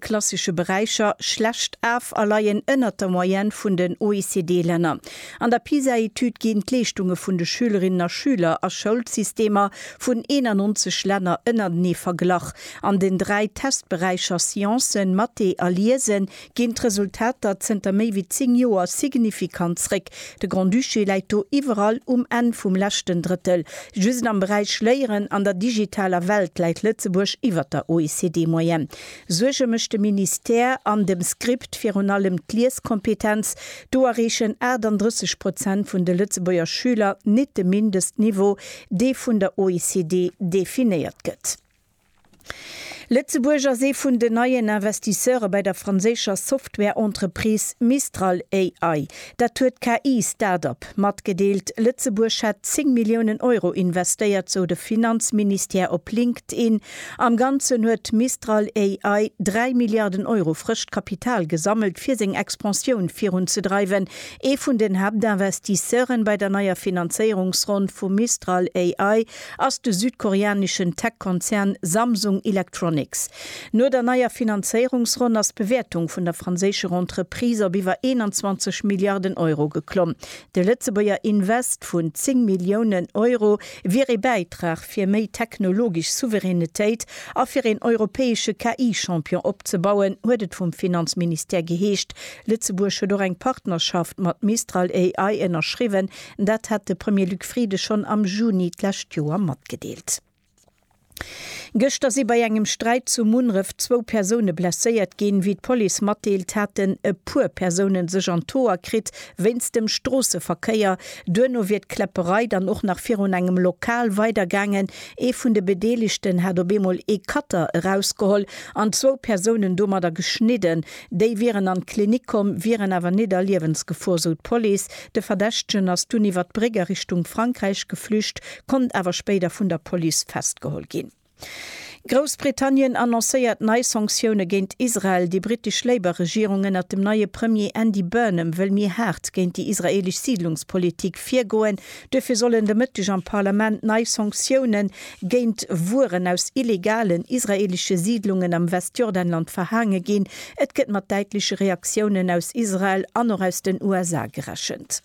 klassesche Beräicher schlecht af a leien ënnert der Moyenne vun den OECD-Länner. An der PISA-Etüd ginn d'Leeschtunge vun de Schülerinnen a Schüler a Schoulsystemer vun 91 Länner ënnertenee verglach. An den dräi Testberäicher Sciencen, Mathé a Liese ginn d'Resultater zënter méi wéi zéng Joer signifikant zréck. De Grand-Duché läit do iwwerall um Enn vum leschten Drëttel. Just am Beräich Léieren an der digitaler Welt läit Lëtzebuerg iwwer der OECD-Moyenne. Suerge mécht de Ministère an dem Script virun allem d'Lieskompetenz. Do erreechen 38 Prozent vun de Lëtzebuerger Schüler nit de Mindestniveau, dee vun der OECD definéiert gëtt. Lëtzebuerg ass ee vun den neien Investisseure bei der franséischer Software-Entreprise Mistral AI. Dat huet d'KI-Startup matgedeelt. Lëtzebuerg hätt 10 Milliounen Euro investéiert, sou de Finanzministère op LinkedIn. Am Ganzen huet Mistral AI 3 Milliarden Euro frëscht Kapital gesammelt, fir seng Expansioun virunzedreiwen. Ee vun den Haaptinvestisseure bei der neier Finanzéierungsronn vu Mistral AI ass de südkoreaneschen Tech-Konzern Samsung Electronics. No der neier Finanzéierungsronn ass d'Bewäertung vun der franséischer Entreprise op iwwer 21 Milliarden Euro geklomm. De Lëtzebuerger Invest vun 10 Milliounen Euro wier ee Bäitrag fir méi technologesch Souveränetéit a fir een europäesche KI-Champion opzebauen, huet et vum Finanzministère geheescht. Lëtzebuerg huet och eng Partnerschaft mat Mistral AI ënnerschriwwen. Dat hat de Premier Luc Frieden schonn am Juni d'lescht Joer matgedeelt. Gëschter si bei engem Sträit zu Munref zwou Persoune blesséiert ginn. Wéi d'Police matdeelt, haten e puer Persoune sech an d'Hoer kritt wéinst dem Stroosseverkéier. Duerno wier d'Kläpperei dann och nach virun engem Lokal weider gaangen. Ee vun de Bedeelegten hat op eemol ee Cutter erausgeholl an zwou Persounen domadder geschnidden. Déi wieren an d'Klinik komm, wieren awer net a Liewensgefor, sou d'Police. De Verdächtegen ass dunn iwwer d'Bréck a Richtung Frankräich geflücht, konnt awer spéider vun der Police festgeholl ginn. Groussbritannien annoncéiert nei Sanktioune géint Israel, Déi brittesch Labour-Regierung ënnert dem neie Premier Andy Burnham wëll méi haart géint déi israeelesch Siidlungspolitik virgoen. Duerfir sollen de Mëtteg am Parlament nei Sanktioune géint Wueren aus illegalen israeelesche Siidlungen am Westjordanland verhaange ginn. Et gëtt mat däitleche Reaktiounen aus Israel an och aus den USA gerechent.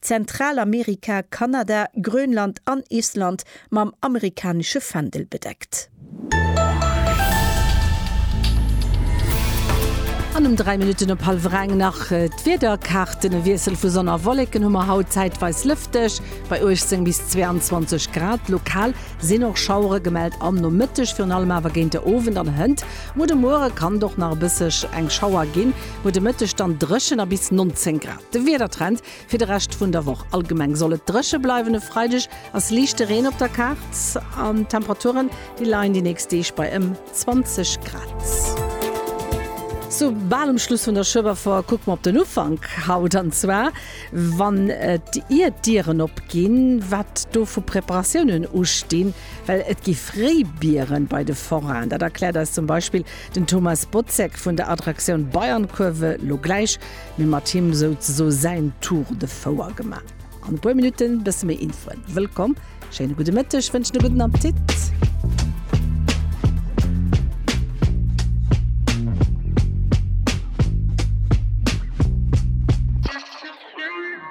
Zentralamerika, Kanada, Grönland an Island mam amerikanesche Fändel bedeckt. An um 3 Minutten op hallwer eng nach d'Wiederkaarten. E Wiessel vu Sonn a Wolleken hu mer haut, zäitweis lëfteg bei 18 bis 22 Grad. Lokal sinn och Schauere gemellt am Nomëtteg, virun allem awer géint de Owend an hënt no de Muere kann et och nach e bësseg eng Schauer ginn. No de Mëtteg dann dréchen a bis 19 Grad. De Wiedertrend fir de Rescht vun der Woch, Allgemeng soll et dréche bleiwen, e Freideg ass liichte Reen op der Kaart an d'Temperaturen, déi leien déi nächst Deeg bei ëm 20 Grad. Sou bal um Schluss vun der Schueberfoire kucke mer op den Ufank haut, an zwar wann et ier d'Dieren opginn, wat do vu Preparatiounen ustinn, well et gi fréi Bieren bei de Forainen. Dat erkläert eis zum Beispill den Thomas Botzek vun der Attraktioun Bayernkurve lo gläich. Mir mat him souzeso säin Tour de Fouer gemaach. An e puer Minutten bësse méi Infoen. Wëllkomm, schéine gudde Mëtteg, wënschen e gudden Appetit.